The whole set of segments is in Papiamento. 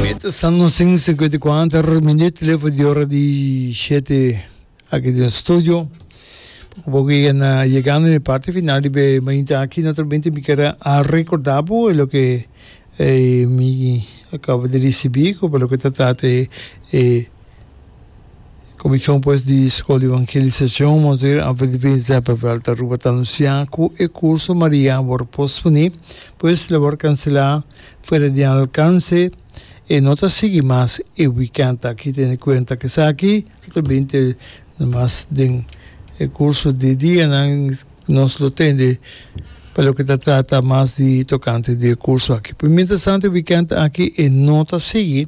Mita San Nosin sinkuenta i kuater minüt lefo di ora di shete aki den studio. Poco poco e na yegando den e parti final di be mainta aki. Naturalmente mi ker a recorda bo loke mi a kaba di risibi ku pa loke ta tate e. E Komishon pues di Skol di Evangelisashon Monseger Alfred Divin Zeppenveld ta Aruba ta anunsiá ku e kurso Maria a wòrdu posponé, pues el a wòrdu kanselá fuera di nan alkanse, e no ta sigui mas e wikènt aki. Teniendo kuenta ku esaki lo ta binte nomas den e kurso di dianan, nos lo tende pa loke ta trata mas di tokante di e kurso aki. Pero mientras tanto e wikènt aki e no ta sigui.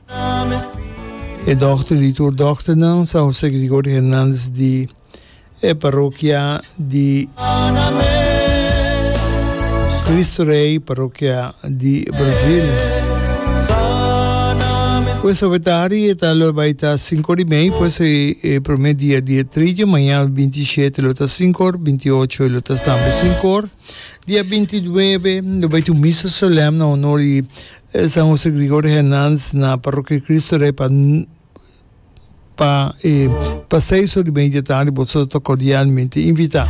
E dòkter di tur dòkternan San José Gregorio Hernández di e parokia di Kristu Rei parokia di Brazil ku e sopetari e ta lo bai ta sinku ora i mei pues e promé dia di e trigio maña binti i shete lo ta sinku or binti i ocho lo ta tambe sinku or dia binti i nuebe lo bai ta un misa solèm na onor di San Jose Gregorio Hernandez na Parrokia Cristo Rey pa pa e Paseiso di Media Tardi boso ta cordialmente invita.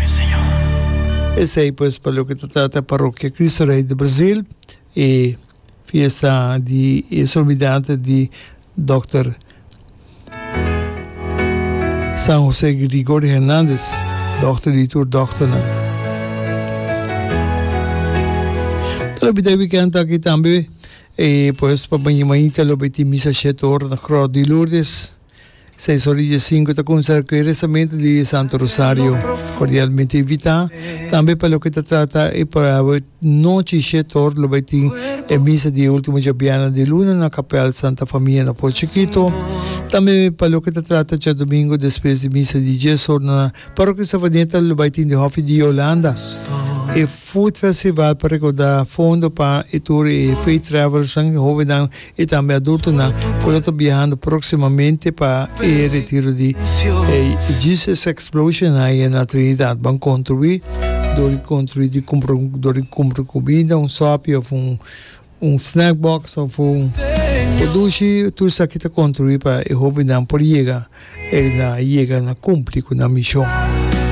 Esey pues pa loke ta trata e Parrokia Cristo Rey di Brazil e fiesta di e Solemnidad di Dòkter San José Gregorio Hernandez, dòkter di tur dòkternan. Lo bida e weekend aki tambe, e pues pa baña mañita lo beti misa shet ora na Krò di Lourdes. Seis ora die sinku ta kumsa ku e resamento di Santo Rosario. Kordialmente invitá tambe pa loke ta trata e Nochi Shetor lo bai tin e misa di ultimo djabiana di luna na kapèl Santa Famia na Por Chikito. Tambe pa loke ta trata djadumingu despues di misa di dies or na Parokia Savaneta lo bai tin di Hofi di Yolanda e Food Festival pa rekorda fondo pa e tur e Faith Travelers nan, e hobennan. y tambe adultonan cu lo ta biahando proximamente pa e retiro di Jesus Explosion High na Trinidad ban contrui, dor di contrui di cumpra dor di cumpra cubida, un sopi of un snack box of un por dushi tur esaki ta contrui pa e hobennan por yega na cumpli cu nan mision.